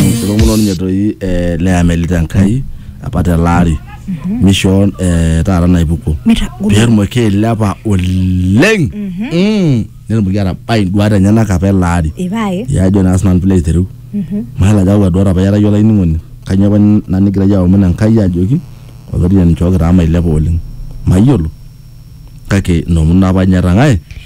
Mishoo muno ninye toi eh, le Amelita Enkai apa tele ari. Mishoo eh, taata naipuko. Mitagolo. Pee etumoki ailepa oleng. Mm. Netumoki atabai induat enyenak apa ele ari. Ipae. Ya ajo naa sinanu pilo aitereu. Mayiolo ajo kakwa duat apa iyata iyie olainining'oni. Kanyoo apa ina nigira iyie aomon Enkai ajoki olaitoriani nchooki taa mailepa oleng. Mayiolo kake inoomon apa ninye etang'ae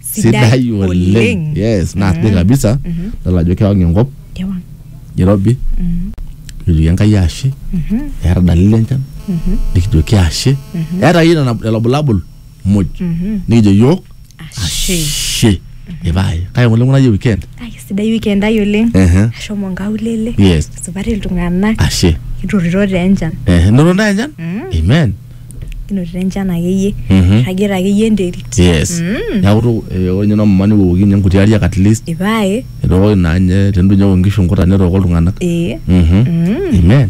sidai oleng yes naa sidai kabisa idol ajo kewang enkop Kewang. irobi nikijoki enkai ashe eeta dalili enchan nikijoki ashe eeta akeyie nena lelo bulabul muj nikijo yiok Ashe. ashe ipae kake ng'ole ng'unayie weekend Ai, sidai weekend ai oleng Ehe. ashomo nkaulele Yes. supati iltung'anak ashe kiturito taa enchan Eh, noto ntae enchan amen kinotito enchan akeyie Mhm. irragita akeyie enterit yes Mm. neeku tu- eh, ore ninye nomama niwooki ninye nkuti ariak at least ipae etookoki naa ninye tenitu ninye eok nkishu nkuta netooko iltung'anak ee Mhm. Mm. amen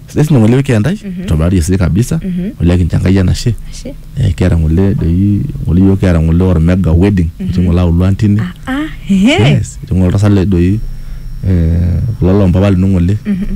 sidai sinye ng'ole wiki entai itobirari esidai kabisa Mhm. ole kincho enkai enashe Ashe. Eh, kiata ng'ole doi ng'ole yiok kiata ng'ole ormega wedding etii ng'ole auluo antini Ah, ah, ehe. yes etii ng'ole oltasat le doi eh, kulo lompapa lino ng'ole Mhm.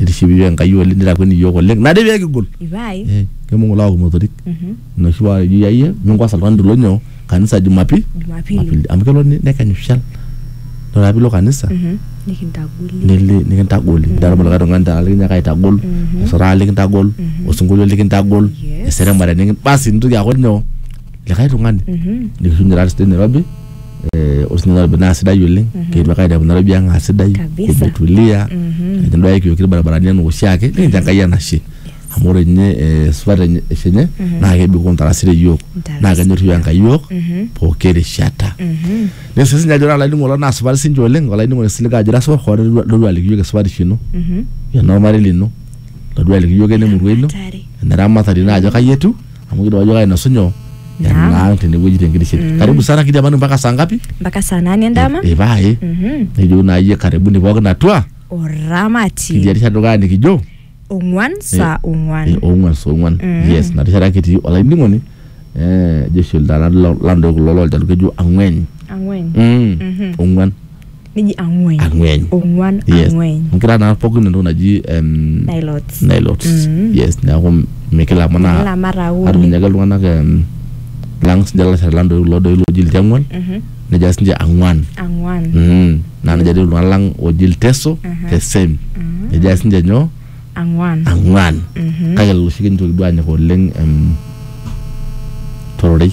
Itishipi iyiook Enkai oleng nitakueni iyiook oleng nade pee kigol. Ipae. Eh, Kibung ilewa kumotorik. Mhm. Inoshi paa eji yayie minkuasa oltung'ani tolo nyoo kanisa Jumapili. Jumapili. Jumapili. Amu kelo ni- nekenyu shal. Ore ake piilo kanisa Mhm. Nikintagoli. nili nikintagoli. Nidol likae tung'ani taata likinyiaka aitagol, Mhm. osotaa likintagol, Mhm. osinkolio likintagol, Yes. eseremare nikin basi nintoki aaku nyoo likae tung'ani. Mhm. Nikishukunye taata sidai Nairobi eh, osina nairobi naa sidai oleng kiitu ake ainepu nairobi ang aa sidai Kabisa. kimetulia nikinduaya ikiyokito irbaribarani enaa oshiake nikincho enkai enashe amu ore ninye eh, esipata enye- eshe enye naa kebikoo ntarasi te yiok Ntarasi. naa kenyorriu enkai yiok pooki rishata nesu sinye ajo ore olainining'oni lang naa supati sinche oleng olainining'oni siliga ajo ira supat hoo todua- todua aliki yiok esupatisho ino enormarei lino todua aliki yiok enemurua ino Hatari. eneramatare ino ajo kai etiu amu kidim ajo kainosu nyoo Naam. enaang tenewueji tenkitishet karibu sana kidiamanu mpaka saa ngapi mpaka saa nane endama ipae Mhm. nejo naa iyie karibuni pookin atua oramati kidia rishata dukuya nikijo ong'uan saa Eh, ong'uan ong'uan saa ong'uan Mm. yes na rishata kitii olainining'oni eh, jeshi ildana landoe kulo loljaluo kejo ang'ueny ang'wen Mm. Mhm. ong'uan neji ang'ueny ang'ueny ong'uan yes ang'ueny nkira naa pookin entoki naji em, nilots nilots Mm. yes neeku mikilamanaa Kila mara uni atunyaki iltung'anak em, lang sinche lalashera lang doi kulo doi looji ilchang'uan Mhm. nejia sinche ang'uan ang'uan Mhm. naa nejia doi iltung'anak lang ooji ilteso Aha. the same Mhm. nejia sinche nyoo ang'uan ang'uan Mhm. kake lelo oshi kintoki duo anyok oleng em, tororei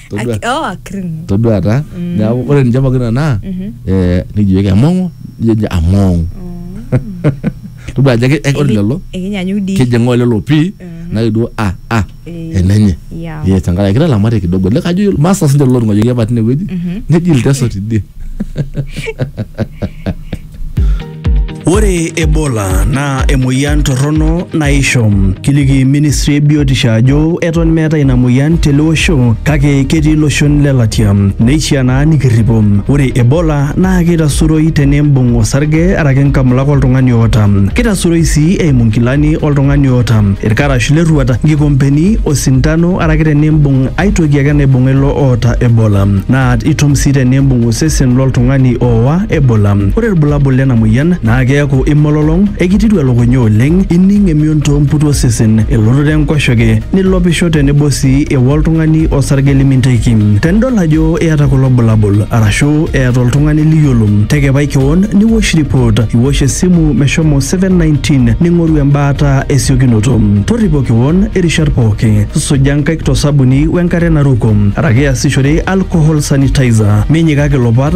Todua- Aki- oh, akirng'u. todua taa neaku ore ninche pookin anaa eh, nikijoki among'u nijo ninche among'u todua ajo eke- ore lelo Ekinyanyuk dii. kejeng'oo lelo pii nake duo a a Eh, enenye yeah. Yes, tenkaraki kitalamate kidogo le kajo yiolo- master sinche lelo tung'ayiok apa tinewueji neji ilteso tidie Ore Ebola naa emoyian torrono naisho. Kiliki ministry e biotisho ajo eton meetae ina moyian tele osho kake ketii iloshon le latia. Neishiaa naa nikirripo. Ore Ebola naa keitasuroi tenimbung osarge araki nkamulak oltung'ani oota. Keitasuroi sii eimu nkilani oltung'ani oota, ilkarash le rruat, nkikompeni, osindano araki tenimbung ae toki ake naibung'a ilo oota Ebola. Naa itum sii tenimbung osesen loltung'ani ooa Ebola. Ore ilbulabul lena moyian naa keaku imololong, ekititu elukunya oleng, ining emion too mputu osesen, elototo enkoshoke, nilopisho tenebo sii ewok oltung'ani osarge liminteiki. Tenidol ajo iyata kulo bulabul arashu eeta oltung'ani liyiolo, tekepai kewon niwosh report, iwosh esimu meshomo 719 ning'oru embaata esiokinoto. Torripo kewon irishat pooki, suja nkaik to sabuni wenkare naruko araki iasishore alcohol sanitizer. Minyikaki ilopat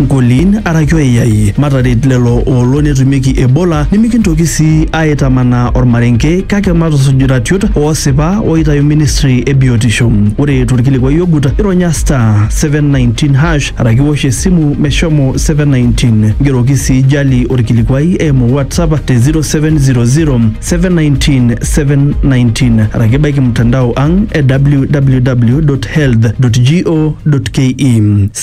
Nkolin araki oyai, mataret lelo oolo netumieki Ebola nimikintoki sii aaitamanaa olmarenke kake matusuj iratiot oosipa ooitayu ministry e biotisho. Ore tolkilikuai ogut, ironya *719# araki iwosh esimu meshomo 719. Ngeroki sii Jali olkilikuai eimu WhatsApp te 0700-719-719 araki baiki mtandao ang e www.health.go.ke.